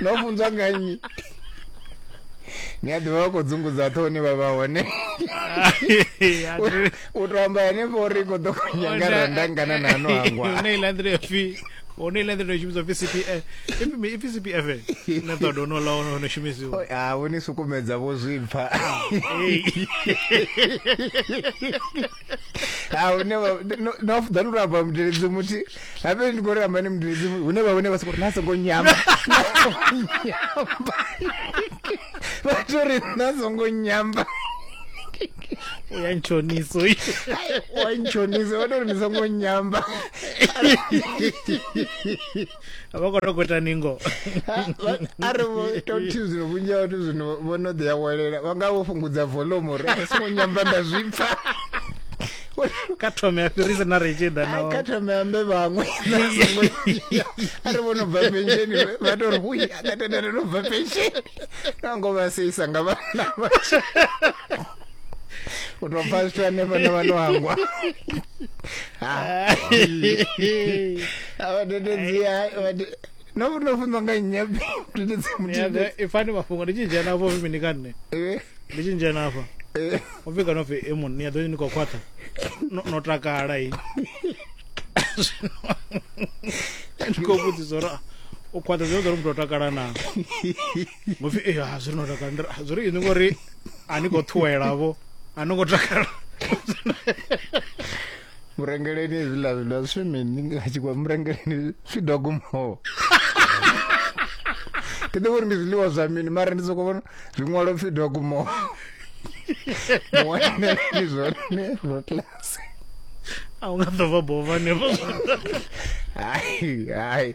no funzwa nga nnyi ni a ḓivha vha khou dzungudza ṱho hune vha vha hone u to amba henefho uri i khou ḓo khonyanga randa ngana na ano hangwa hone iḽa nḓila ya pfi hone iḽa nḓila ya shumiswa pfi cpf ipfi cpf na ṱoḓa ono ḽa ono ono shumisiwa oh, ha vho ni sukumedza vho zwipfa ha hune vha- no- no afudza ndi ramba mudeledzi muthi habe ndi khou ramba ni mudeledzi muthi hune vha hune vha sokou ri na songo nyama na songo nyamba vha to ri na songo nyamba uya ntshoniso uyu wa ntshonisa vha to ri ni songo nyamba a vha khou tou kweta ningo a ri vho tou thi zwino vhunzhi ha vhathu zwino vho no ḓi awelela vha nga vho fhungudza volume uri a songo nyamba nda zwi pfa ka thome a fhirisa na re tshi ḓa ka thome ambe vhaṅwe a ri vho no bva pensheni vha tou ri hui a katendele no bva pensheni nango vha seisa nga vhana unobva zviya nevana vanohangwa avadededziya nofunwa nga nyabi ifani mafhungo ndi tshizhia nafho vhi mini ka nṋe eh. ndi tshizhia nafha eh. u pfhi kana pfhi e munna ni a ḓo ni khou khwaṱha no takala i ndi khou vhudzisa uri u khwaṱha zwi ḓo ri muthu o takala naa ngo pfi eh ha zwi no takala Ndi ri, "Ah, zwi ri ini ngori a ni khou ṱhuwela vho a ni ngo takala murengeleni hezwiḽa zwiḽa zwi mini nga tshikwa murengeleni zwi dogumaho ndi ḓivha uri ndi zwiḽiwa zwa mini mara ndi soko vhona zwiṅwalo pfi dogumaho muwaneleni zwone zwo class a u nga ḓo bva bova hanefho hai hai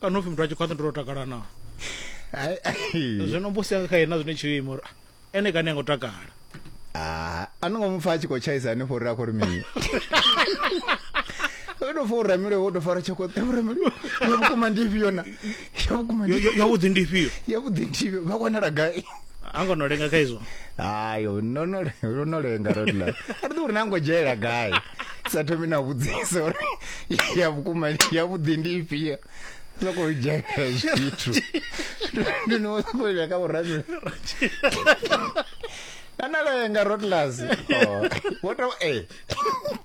kana upfi muthu a tshi khwaṱha ndo takala na zwino mbusi yanga kha yena zwine tshiyo ima uri ene kani a ngo takala ah, a no ngo mu pfa a tshi khou tshaisa hanefho uri a khou ri mini o tou fa u ramile wo tou fara tshokoṱe u ramile ya vhukuma ndi ifhio na ya vhukuma yavhuḓi ndi ifhio yavhuḓi ndi ifhio vha wanala gai ango no lenga kha izwo hayi no no ro no lenga ro la a ri uri nango dzhela gai sa thomi na vhudzisa uri ya vhukuma ya vhuḓi ndi ifhio soko dzhela zwithu ndi no soko ya ka vhurabe ana lenga ro la wo to eh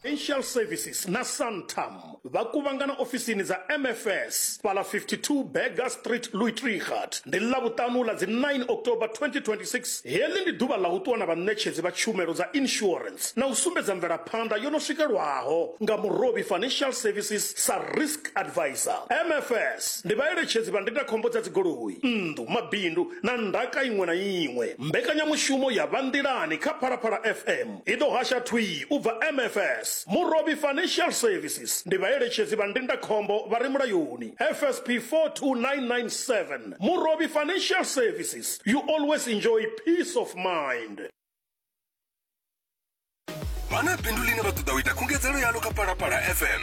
Financial Services na Santam vha kuvhangana ofisini dza MFS fhaḽa 52 Burger Street, Luitregat, ndi Ḽavhuṱanu ḽa dzi 9 October 2026. Heḽi ndi ḓuvha ḽa u ṱuwa na vhaṋetshedzi vha tshumelo dza insurance na u sumbedza mvelaphanḓa yo no swikelwaho nga Murovhi Financial Services sa Risk Advisor. MFS ndi vhaeletshedzi vha ndindakhombo dza dzigoloi, nnḓu, mabindu na ndaka iṅwe na iṅwe. Mbekanyamushumo ya Vha Nḓilani kha Phalaphala FM. I ḓo hasha thwii u bva MFS, Murovhi Financial Services, ndi vhaeletshedzi vha ndindakhombo vha re mulayoni, FSP 42997, Murovhi Financial Services, you always enjoy peace of mind. Vha na bindu ḽine vha ṱoḓa u ita khungedzelo yaḽo kha Phalaphala FM?